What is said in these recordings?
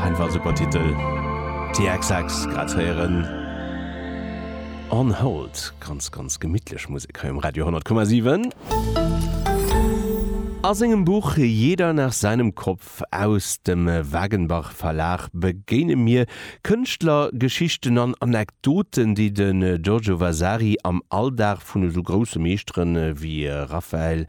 Einfach super Titel. TXX grad ze héieren. On Hold, ganz, ganz gemittlech Musek hei um Radio 10,7. A sengem Buch Jeder nach seinem Kopf aus dem Wagenbach Verlag begéine mir Kënschtlergeschichten an Anekdoten, déi de Giorgio Vasari am Alldag vun esou grousse Meeschtere wéi Raphael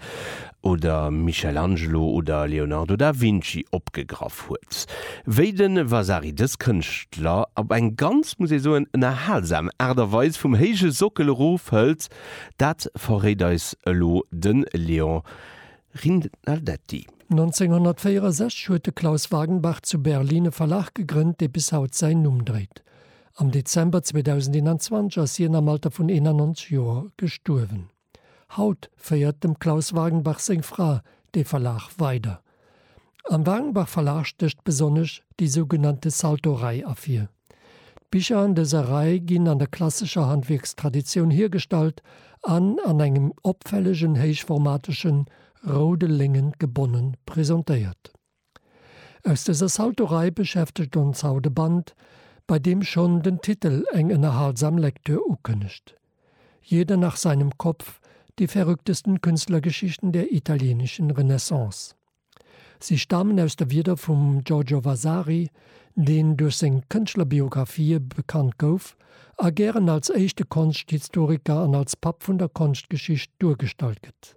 oder Michelangelo oder Leonardo da Vinci opgegraff huet. Wéi de Vasari dës Kënschtler op eng ganz, muss ee soen, ënnerhalsam Aart a Weis vum héije Sockel erofhëlt, dat verréit eis elo de Léon Rinaldetti. 1964 huet de Klaus Wagenbach zu Berlin e Verlag gegrënnt, dee bis haut säin Numm dréit. Am Dezember 2021 ass hien am Alter vun 91 Joer gestuerwen. Haut féiert dem Klaus Wagenbach seng Fra dee Verlag weider. Am Wagenbach Verlag stécht besonnesch déi sougenannte Salto-Rei ervir. D'Bicher an dëser Rei ginn an der klassescher Handwierkstraditioun hiergestallt an an engem opfällegen héichformateschen roude Léngen gebonne presentéiert. Aus dëser Saltorei beschäftegt ons haut e Band, bei deem schonn den Titel eng ënnerhalsam Lektür ukënnegt, Jeder nach seinem Kopf, die verrücktesten Künstlergeschichten der italienischen Renaissance. Si stamen aus de Wierder vum Giorgio Vasari, deen duerch seng Kënschtlerbiographie bekannt gouf a gären als éischte Konschthistoriker an als Papp vun der Konschtgeschicht duergestallt gëtt.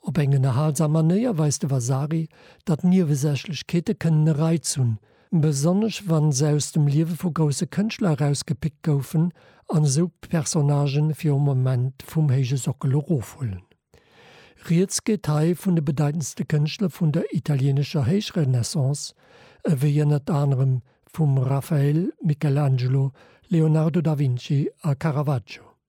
Op eng ënnerhalsam Manéier weist de Vasari, datt Niewesächlechkeete kënnen e Reiz hunn, besonnesch wa se aus dem Liewe vu grousse Kënschtler erausgepickt goufen an esou Personnagë fir e Moment vum héije Sockel erofhuelen. Rieds geet hei vun de bedeitendste Kënschtler vun der italieenescher Héichrenaissance, ewéi ënnert anerem vum Raphael, Michelangelo, Leonardo da Vinci a Caravaggio.